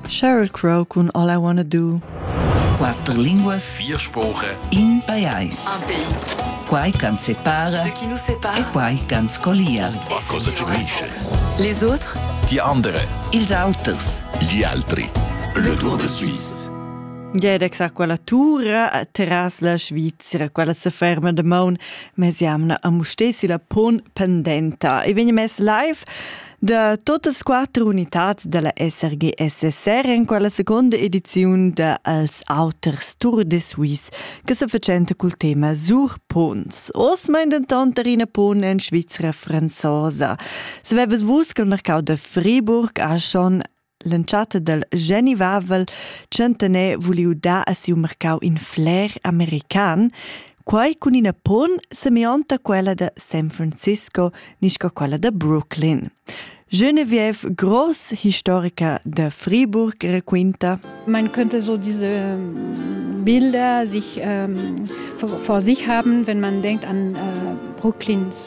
Cheryl Crow cun All I Wanna Do. Quatter linguas, vier spoche, in pajais. Un pays. Quai can separa, Ce qui nous sépare. e quai can scolia. Ma cosa ci dice? Les autres, Die andere, ils auters. gli altri. Le Tour de Suisse. Jedex a quella tura a terras la Svizzera, quella se ferma de maun, mes jamna a mustesi la pon pendenta. E vegni mes live Da totas quatter unitads dalla SRG SSR en quella seconda ediziun da Els auters Tour de Suisse che se facenta col tema Sur Pons. Os mein denton terrina pon en Svizzera franzosa. Se vevas vus col mercau de Friburg a schon L'entschatta dal genivavel tschentaner vuliu dar a siu mercau in fler american, quai cun ina pon semionta quella da San Francisco nisca quella da Brooklyn. Genevieve, gross historica de Friburg, raquinta: Man könnte so diese ähm, Bilder sich ähm, vor, vor, sich haben, wenn man denkt an äh, Brooklins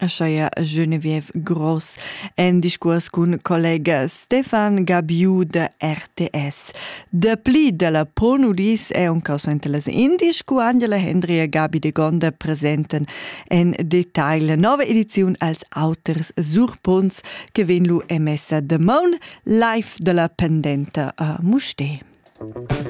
Ascheia jeu ne viev gross en discuors cun collega Stefan Gabiu da RTS. Dapli dalla Ponudis è un causainta las indies cu Angela Hendry e Gabi de Gonda presenten en detail la nova ediziun als auters surpunts che vegn lu emessa damaun live dalla pendenta a Musté. Musik